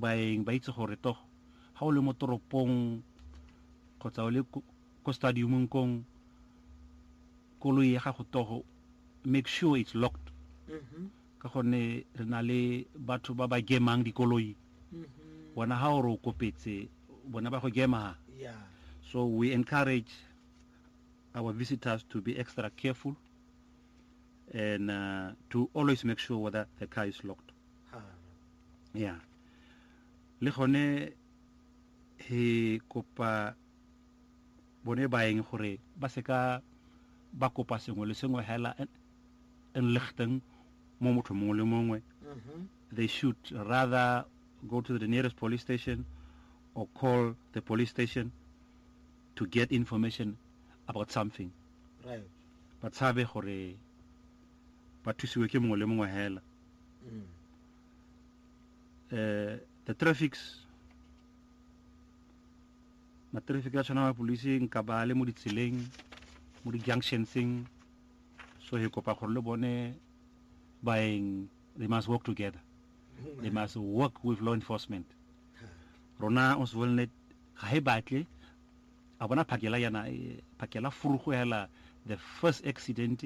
baeng ba itse gore togo ga o le mo toropong kgotsa o le ko stadiumong kong koloi ya gago togo make sure it's locked mm-hmm. ka gonne re na le batho ba ba gemang dikoloi mm-hmm. bona ga o re o kopetse bona ba go gema so we encourage our visitors to be extra careful and uh, to always make sure whether the car is locked ya le gone he kopa bone baeng gore ba seka ba kopa sengwe le sengwe hela enlichten mo motho mongwe le mongwe mm-hmm. they should rather go to the nearest police station or call the police station to get information about something right ba tshabe gore ba thusiwe ke mongwe le mongwe hela eh, the traffics ma-traffic a tshwana mapodisi nka ba le mo ditseleng mo di-junctionseng so he kopa gore le bone baeng they must work together they must work with law enforcement rona oswelnet ga he batle a bona phakela yana eh, phakela furugo hela the first accident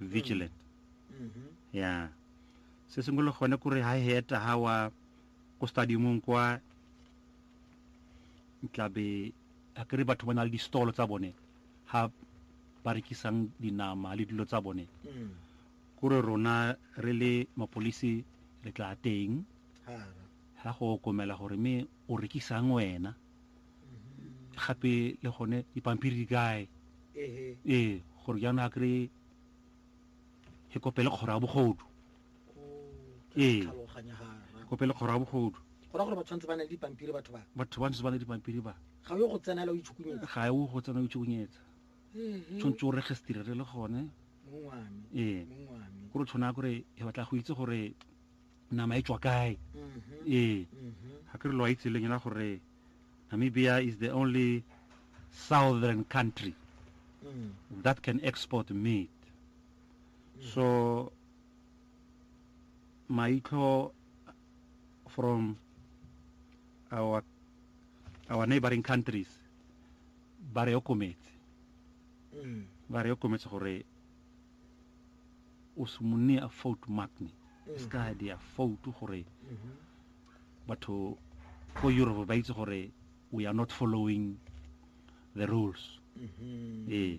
vigilant mm-hmm. ya se sengwe le gone kore ha heta ha wa ko stadiumong kwa tlabe a kere batho ba na le di-stolo tsa bone ha ba rekisang dinama le dilo tsa bone mm. kore rona re le mapolisi re tla teng ga go okomela gore me o rekisang wena gape le gone dipampiri di kae ee gore jaanong a kry e kopele kgoro ya bogodu ee kopele kgoro ya bogodu gora gore ba tshwanetse ba na le dipampiri batho ba batho ba ntse ba na le dipampiri ba ga yo go tsena la o itshukunyetsa ga yo go tsena o itshukunyetsa tshwanetse o registrere le gone ee gore tshwana gore e batla go itse gore nama e tswa kae ee ga ke re lo a itse leng ena gore namibia is the only southern country that can export meat so maitlho from our our neighboring countries ba re okometse ba re okometse gore o se mo nea fault magni e se ka dia fault gore batho ko europe ba itse gore we are not following the rules mm-hmm. ee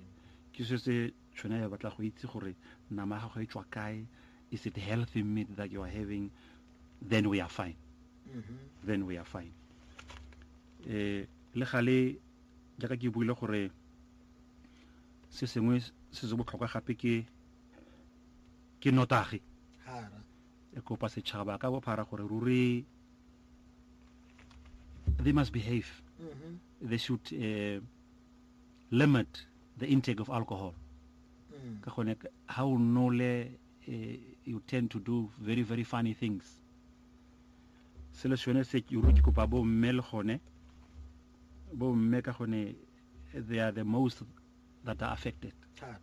ke se se tshwana ya batla go itse gore nama ga go e tswa kae is it healthy meat that you are having then we are fine mm-hmm. then we are fine eh le gale jaaka ke buile gore se sengwe se se botlhokwa gape ke ke notagi hara e kopa setšhaba ka bophara gore ruri they must behave mm -hmm. they should uh, limit the intake of alcohol mm. ka gone ha o nole uh, you tend to do very very funny things selo sone se ke kopa bo mme le gone bo mme ka gone they are the most that are affected thata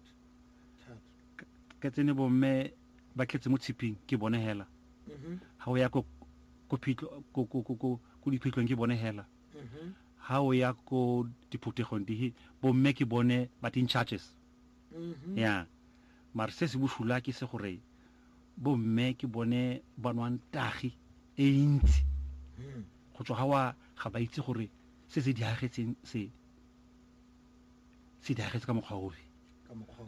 thata ka tsene bomme ba tletse mo tshiping ke bone hela mhm ga o ya ko ko phitlho ko ko ko ko ko diphitlhong ke bone hela mhm ga o ya ko diphuthegong dihe bomme ke bone but in charges mhm ya mare se se bosula ke se gore bomme ke bone ba nwang tagi e ntsi mhm go tswa ga wa ga ba itse gore Se se diragetseng se se diragetse ka mokgwa ofe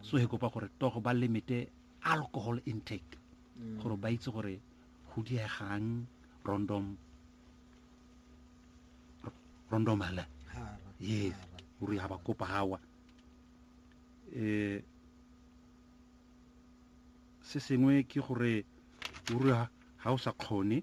so he kopa gore togo ba limite alcohol intake mm. gore ba itse gore go diegang rondom rondom hala yes gore ha ba kopa hawa eh se sengwe ke gore o re ha o sa kgone